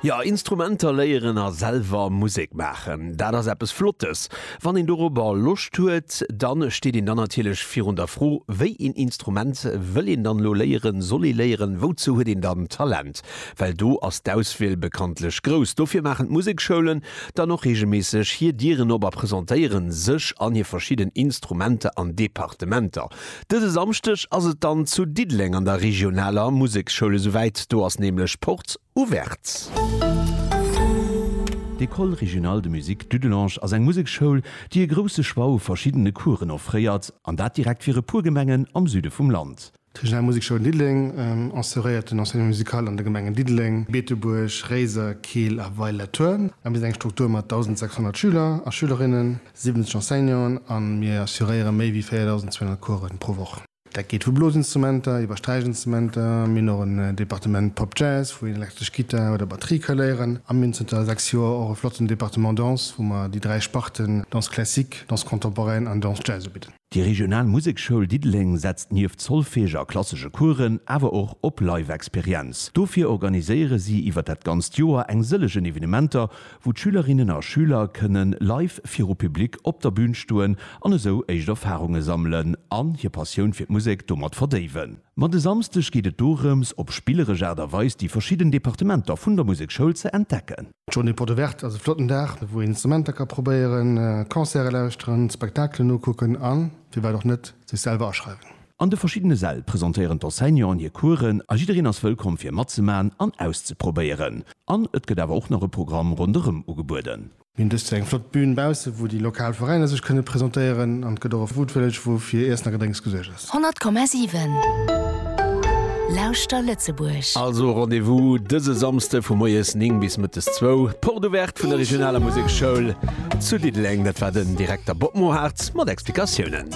Jo, Instrumenter léieren a selwer Musek maachen, dat ass eppes Flottes. Wann een dorobber Loscht huet, da steet een dann natierlech virun der Fro, wéi een Instrument wëll een dann elo léieren, soll ee léieren, wouzou huet een dann Talent? Well do ass d'Auswiel bekanntlech grouss. Dofir maachen d'Musekschoulen dann och reegelméisseg hir Dieren op a presentéiere sech an hir verschidden Instrumenter an Departementer. Dëse Samschdeg ass et dann zu Diddeleng an der regionaler Museksschoul esou wäit, do ass nämlech Porte Ouverte. D'École Régionale de Musique Dudelange ass eng Museksschoul, déi e grousse Choix u verschiddene Coursen offréiert, an dat direkt fir e puer Gemengen am Süde vum Land. D'Regional Musekschoul Diddeleng assuréiert den Enseignement musical an de Gemengen Diddeleng, Beetebuerg, Réiser, Keel a Weiler-Thurn a bitt eng Struktur mat 1.600 Schüler a Schülerinnen. 70 Enseignanten a mir assuréiere méi wéi 4.200 Coursen pro Woch. Dat geet vu Blosinstrumenter iwwer Sträichinstrumenter, mir hunn och en Departement Pop Jazz, wou een elektresch Gittar oder Batterie ka léieren a mir hunn zënter 6 Joer och e flotten Departement Danse, wou mer déi dräi Sparten Danse classique, Danse contemporaine an Danse Jazz ubidden. Déi regional Museksschoul Diddeleng setzt nieft Solfège a klassesche Coursen awer och op Live-Experienz. Dofir organiséiere si iwwer dat ganzt Joer eng sëllegen Evenementer, wou d'Schülerinnen a Schüler kënnen live viru Public op der Bün stoen an esou éischt Erfarunge sammelen an hir Passioun fir d'Musek domat verdéiwen. Ma de Samsdeg geet et dorëms, op spilleresch Aart a Weis déi verschidden Departementer vun der Museksschoul ze entdecken. Journée Porte Ouverte ass e flotten Dag, wou een Instrumenter ka probéieren, Concerte lauschteren, Spektakelen ukucken a firwat och net sech selwer aschreiwen. An de verschiddene Säll presentéieren d'Enseignanten hir Coursen a jiddereen ass wëllkomm fir matzemaachen an auszeprobéieren. An et gëtt awer och nach e Programm ronderëm ugebueden. Mir hunn dëst Joer eng flott Bün bausse wou déi lokal Veräiner sech kënne presentéieren an et gëtt och e Food Village wou fir Iessen a Gedrénks gesuergt ass. 100,7 Lauschter Lëtzebuerg! Also Rendez-vous dëse Samsde vu moies 9 bis mëttes 2, Porte ouverte vun der regionaler Musekschoul zu Diddeleng. Dat war den Direkter Bob Mohartz mat Explikatiounen.